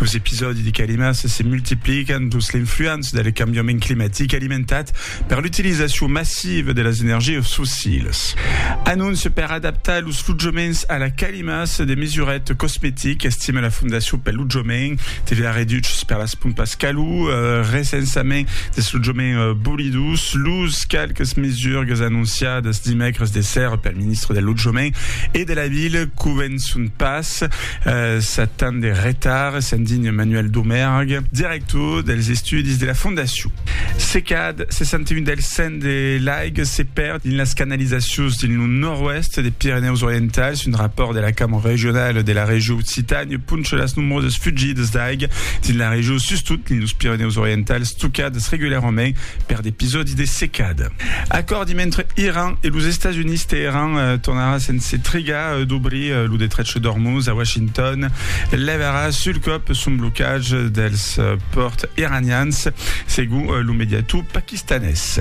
Los episòdi de calimas se multiplican dins l'influença del cambiament climatic alimentat per l'utilizacion massiva de las energias fossilas. Anóncia per adaptar los lotjaments a la calimas, de mesuret cosmetic, estima la Fondacion pel Lotjament, TVA reduches per las pompas calor, recensament dels lotjaments bolidos, los qualques mesurgas anonciadas dimècres de sèrra pel ministre del Lotjament e de la Vila convençon pas. Sat tan de retard, se'n dign Manuel Domerg, director dels estudis de la fondacion. Se cad 61 del cent de l'aic se perd dins las canalizacions dins lo nòrd-oèst de Pirenèus Orientals, un rapòrt de la Cambra Regionala de la Regió Occitània poncha las nombrosas fugidas d'aic dins la regió, sustot dins los Pirenèus Orientals, tocadas regularament per d'episòdis de secada. Acòrdi mentre Iran e los Estats Units, Teheran tornarà sense trigar dobrir lo detrech d'Ormuz a Washington levarà sul còp son blocatge dels pòrts iranians, segon lo mediator paquistanés.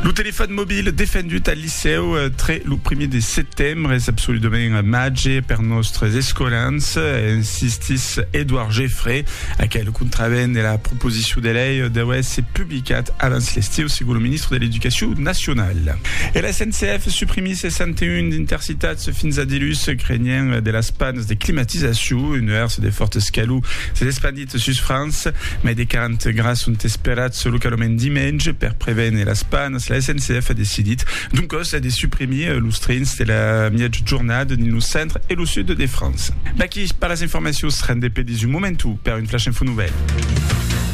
Lo telefòn mobil defendut al licèu tre lo primièr de setembre es absoludament màger per nòstres escolans, insistís Edouard Geffray. Aquel contravèn de la proposicion de lei deu èsser publicat abans l'estiu, segon lo ministre de l'Educacion nacionala. E la SNCF suprimís 61 d'intercités. Tats fins a dilús, crenhent de las pannes de climatizacion, un nuèrs de fòrtes calor s'es espandit sus França. Mai de 40 grads son esperats localament dimenge. Per prevene las pannes, la SNCF a decidit doncòs de suprimir los trens de la mièja jornada dins lo centre e lo sud de França. D'aquí per las informacions, rendez-pe dins un momentu per un Flash Info Nouvèl.